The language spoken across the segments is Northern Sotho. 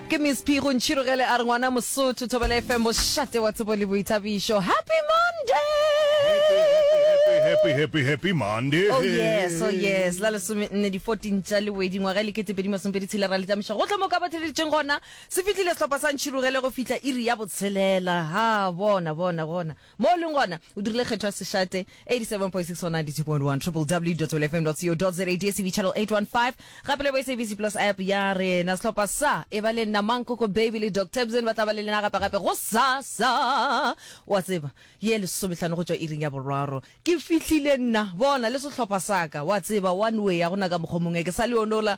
ke miss p go ntšhirogele a re ngwana mosotho thobela fm bošate wa tsebo le boithabišo happy monday happy happy happy monday oh yes oh yes la lesome nne di 14 tša lewedi ngwaga e lekete pedi masompedi tshela ra letamiša gotlhe mo ka ba theleditseng gona se fitlhile sehlopha sa ntšhirogele go fihla iri ya botshelela ha bona bona bona Mo o leng gona, o dirile kgetho ya sešate, 87.6 or 92.1, www.wlfm.co.za, DSTV channel 815, gape le bo SABC Plus app ya rena. Sehlopha sa Eba le Nna, Mang Koko Baby le Doc Tebson ba tla ba le lena gape-gape gosasa, o a tseba, ye lesomehlano go tšwa iring ya boraro. Ke fihlile nna, bona, le sehlopha sa ka, o a tseba, one way, ga go na ka mokgwa mongwe, ke sa le yonola,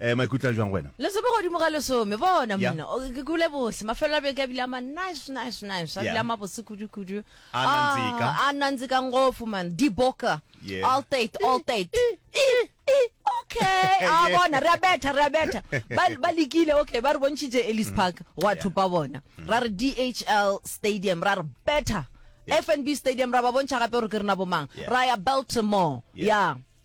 Eh, maikutlo a jwang wena? Lesome godimo ga lesome, bona Yeah. mna. O- Ke kule bose, mafelo a beke a bile a ma nice, nice, nice. A Yeah. bile a mabose kudu, kudu. A nanzika. Ah, A nanzika ngofu, man. Diboka. Yeah. All date, all date. Eh, eh, Okay, a Yeah. bona, re a betha, re a betha. Ba ba lekile, okay, ba re bontšhitše Ellis Park, gwa thopa bona. Ra re DHL Stadium, ra re betha. FNB Stadium, ra ba bontšha gape gore ke rena bomang. Yeah. Ra ya Baltimore, Yeah. ya.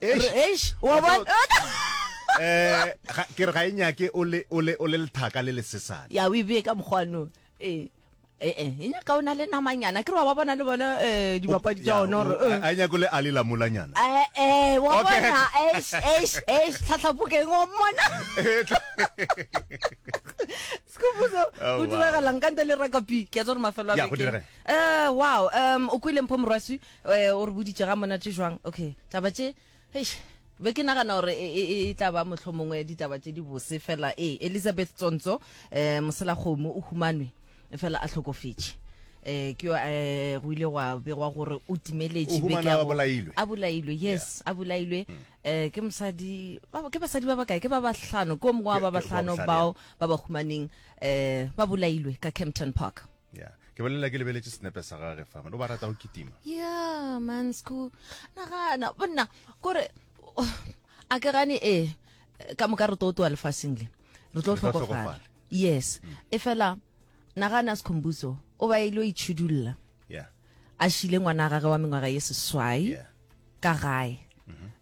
eish wa bona eh ke re ga e nyake o le o le o le lethaka le lesesane ya o ibe ka mokgwano eh eh eh e nyaka ona le namanyana ke re wa bona le bona eh dibapadi tsa ona gore eh. a nyako le ali la mulanyana eh eh wa bona eish eish eish tlhatlhapokeng wa mona sekubuso oh, o diragalang ka nte le rakapi ke a tsore mafelo a beke eh wow um o kwile mpho morwasi Ee, o re boditše ga monate jwang. Okay, taba tše, eish, be ke nagana gore e, e, e tla ba mohlomongwe ditaba tše di bose fela. Ee, Elizabeth Tsontso, eh, Moselakgomo o humanwe fela a hlokofetše. Eh, ke yo, eh, go ile gwa begwa gore o timeletše O beke humanwa ya a go- bolailwe. a bolailwe yes a bolailwe eh ke mosadi ba ba- ke basadi ba bakae ke ba bahlano ke o mongwe wa Ke- ba ke ba bahlano bahlano, bao ba ba humaneng eh ba bolailwe ka Kempton Park ya ke bolelela ke lebeletse senepe sa gage fa o ba rata go kitima ya mansco nagana bonna kore a ke gane ee ka moka re tlo tloa lefaseng le re tlo tlhokofala yes e fela nagana sekhombuso o ba ile o itšhidulla a šile ngwana gage wa mengwaga ye seswai ka gae mm-hmm.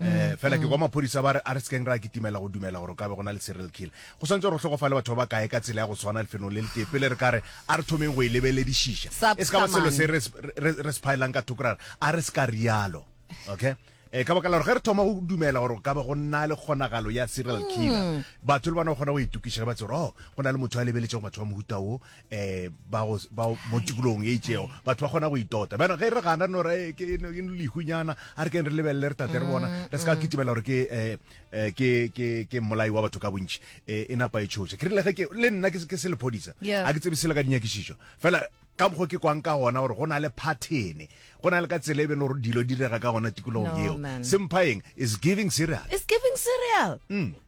um fela ke kwa maphodisa ba re a re sekeng ra kitimela go dumela gore ka be go na le serial killer go swantse gore tlhokofale batho ba ba kae ka tsela ya go tshwana lefelong le letee pele re ka re a re thomeng go e lebeledišiša e se ka ba selo se re se phaelang ka thoko ra re a re se ka rialo okay um ka baka la gore ge re thoma go dumela gore ka ba go nna le kgonagalo ya serial killer hmm. batho le bona o kgona go itokiša ge ba tsere o oh, go na le motho a lebeletsego batho ba mohuta wo eh ba go ba mo tikolong e itsego batho ba kgona go itota bana ge re gana no re ke no ke lehunyana a re ke re lebelle re tate re bona re ska kitimela gore ke eh, eh ke ke ke molai wa batho ka bontši eh, e napa e tshoša ke rile ge ke le nna ke se- ke se lephodisa Yeah. a ke tsebe sele ka dinyakišišo fela ka mokgwa ke kwang ka gona gore go na le pattern go na le ka tsela e be le gore dilo di direga ka gona tikologong No, eo man. se mphaeng is giving serious It's giving cereal.